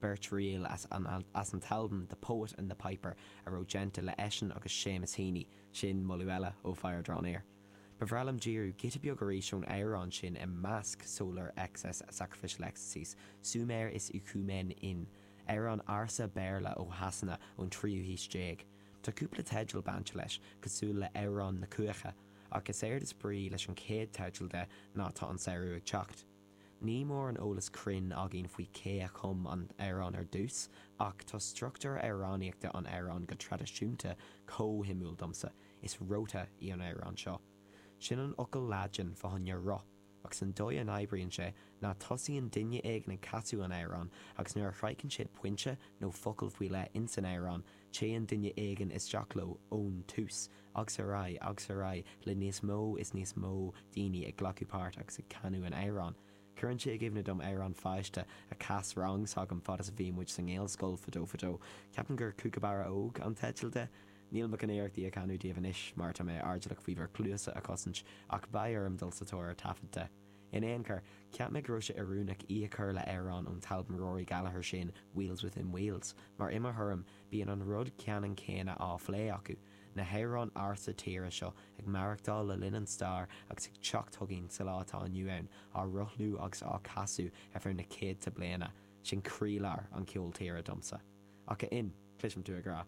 beirt ríl as an alt as an t-albam The Poet and the Piper a raibh déanta le eisean agus Séamus Heaney, sin moladh eile ó Fire Draw Near. Ba bhreá liom díriú giota beag arís ón amhrán sin i measc Solar Excess, Sacrificial Ecstasies, Sumer Is Icumen In, amhrán ársa Béarla ó Shasana ón tríú haois déag. Tá cúpla teideal bainte leis, cosúil le Amhrán na Cuaiche, ach is éard is brí leis an chéad teideal de ná Tá an Samhradh ag Teacht. Níl mórán eolas cruinn againn faoi cé a chum an amhrán ar dtús, ach tá struchtúr amhránaíochta an amhráin go traidisiúnta chomh shuimiúil domsa, is Rota í an amhrán seo. Sin an fhocal Laidin fá choinne roth, agus an dóigh a n-oibríonn sé ná tosaíonn duine éigin ag casadh an amhráin agus nuair a shroicheann siad pointe nó focal faoi leith ins an amhrán, Téann duine éigin isteach leo ón tús agus ar aghaidh agus ar aghaidh le níos mó is níos mó daoine ag glacadh páirt agus ag canadh an amhráin. Cuireann sé i gcuimhne dom amhrán pháiste a chas rang s'agam fad is a bhí muid sa nGaelscoil fadó fadó. Ceapaim gur Cúcabarra Óg an teideal de. Níl mé chun iarracht í a chanadh daoibh anois mar tá mé airdeallach faoi bhur cluasa a chosaint ach beidh orm dul sa tóir ar taifead de. In aon chor, cheap mé go raibh sé oiriúnach í a chur le amhrán ón t-albam Rory Gallagher sin, Wheels Within Wheels, mar i mo thuairim, bíonn an rud ceannann céanna á phlé acu, na hamhráin ársa tíre seo ag maireachtáil le linn an stair agus ag teacht chugainn sa lá atá inniu ann, á rothlú agus á casadh ar feadh na céadta bliana. Sin croílár an cheoil tíre domsa. Ach a Fhinn, cloisim tú ag rá,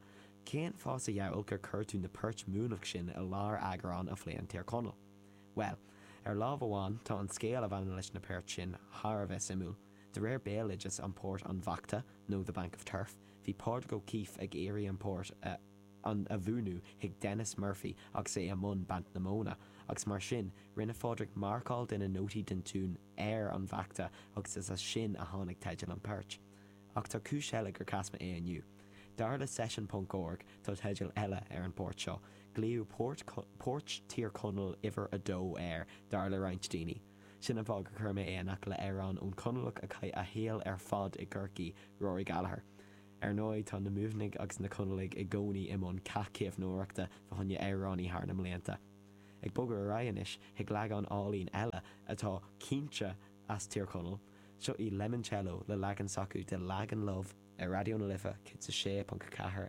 cén fáth sa diabhal gur chuir tú na poirt Muimhneach sin i lár eagrán a phléann Tír Chonaill? Bhuel, ar lámh amháin, tá an scéal a bhaineann leis na poirt sin thar a bheith suimiúil. De réir béaloideas, an port An Bhachta, nó The Bank of Turf, bhí Pádraig O'Keeffe ag iarraidh an port a an a mhúineadh chuig Denis Murphy agus é i mbun baint na móna, agus mar sin, rinne Phádraig marcáil de na nótaí den tiún ar an bhachta agus is as sin a tháinig teideal an phoirt. Ach tá cúis eile gur chas mé é inniu. Dar le Session ponc org tá teideal eile ar an bport seo. Glaodh Port, Port Thír Chonaill uimhir a dó air dar le roinnt daoine. Sin an fáth gur chuir mé é in aice le amhrán ón Conallach a chaith a shaol ar fad i gCorcaigh, Rory Gallagher. Ar ndóigh tá na Muimhnigh agus na Conallaigh i gcónaí i mbun cath caomhnóireachta fá choinne amhránaí thar na mblianta. Ag bogadh ar aghaidh anois chuig leagán álainn eile atá cinnte as Tír Chonaill, seo í Lemoncello le leagan s'acu de Lagan Love ar Raidió na Life 106.4